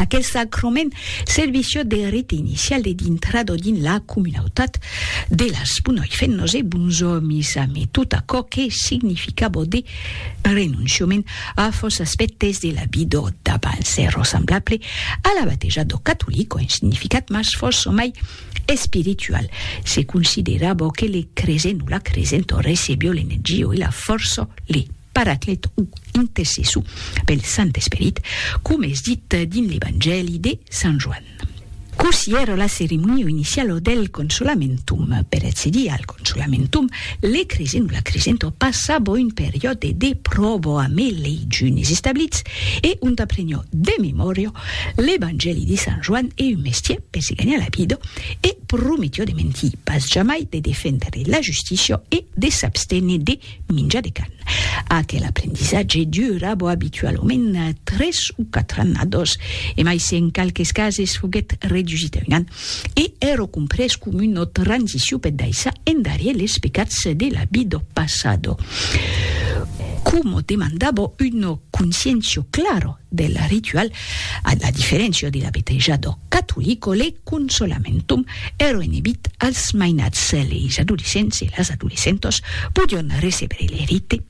Aquel sacrament servissió de rite inicial e d'intrada dins la comunautat de las Punòi fent nos e bons òmis amé tot aquò que significabó de renonciament a fòs aspèctes de la vidó d'abans e rossemblable a la bateja do catolic ont significat mas fòs somai espiritual se considerabó que le cresent o la cresent o recebió l'energió e la fòrça le Paraclet o intercessor pel Sant Esperit, coma es dit dins l'Evangèli de Sant Joan. Cossí èra la ceremonia iniciala del Consolamentum? Per accedir al Consolamentum, le cresent o la cresenta passava un periòde de pròva amé lei junis establits e ont apreniá de memòria l'Evangèli de Sant Joan e un mestièr per se ganhar la vida e prometiá de mentir pas jamai, de defendre la justícia e de s'absténer de Minja de can. Aquel aprendissatge dura bo abitualament tres o quatre annados, e mai se en qualques cases foguèt redusit a un an, e ero comprés com una transicion per daissar endarier les pecats de la vid do passado. Como demanda bo una conscientio clara del ritual, a la diferéncia de la beteja d'ò catolic o le consolamentum, eroenebit als mainats, leis adolescents e las adolescentas podion recebre le rite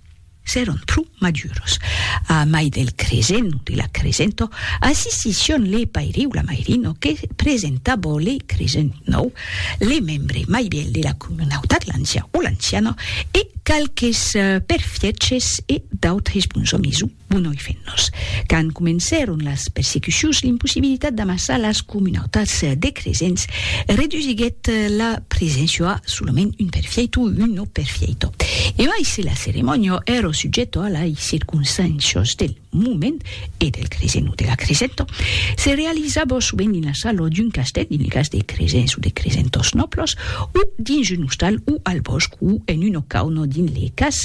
s'èron pro maduros. A mai del cresent o de la cresenta, assistission le paire o la mairina que presentava le cresent nòu, le membre mai vièlh de la comunautat, l'ancian o l'anciana, e qualques perfièches e d'autres bons òmis o. Bon noi fennos. Quand comencèron las persecucions, l'impossibilitat d'amassar las comunautats de cresents redusiguèt la preséncia a solament un perfieito o un no perfieito. E mai se la ceremònia èra subjèta a lai circonstàncias del moment e del cresent o de la cresenta, se realizava sovent dins la sala d'un castèl, dins lo cas de cresents o de cresentors nòblas, o dins un ostal o al bòsc o en una cauna dins le cas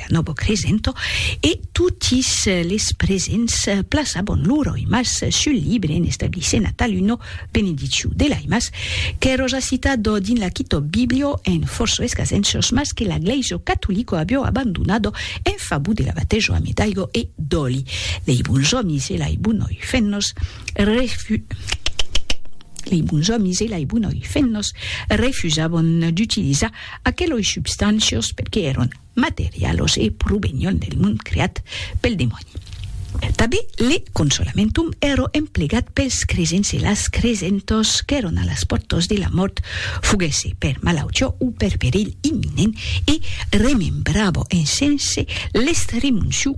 Novo Cresento e totis les presents plaçabon lor aimas sul libre en establissent a taluno benediciu de l'aimas qu'è roja citado dins la Kitòb Biblio en forço escasenços mas que la Glèiso Catolico abio abandonado en favor de la batejo ame d'aigo e d'òli lei bons òmis e lai bonoi fennos refu lei bons òmis e lai bonoi fennos refusabon d'utilizar aqueloi substancios perque èron materialos e provenion del mond creat pel demòni. Tanben le consolamentum èro emplegat pels cresents e las cresentòs qu'èron a las pòrtas de la mòrt, foguèsse per malautiá o per perilh imminent, e remembrava en sense l'estremociu,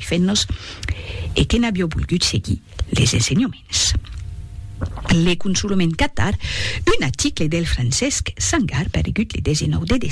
fent-nos e que n'avió volgut seguir les ensenhoments. Le consolament catar un aticle del Francesc Sangar paregut le 19 de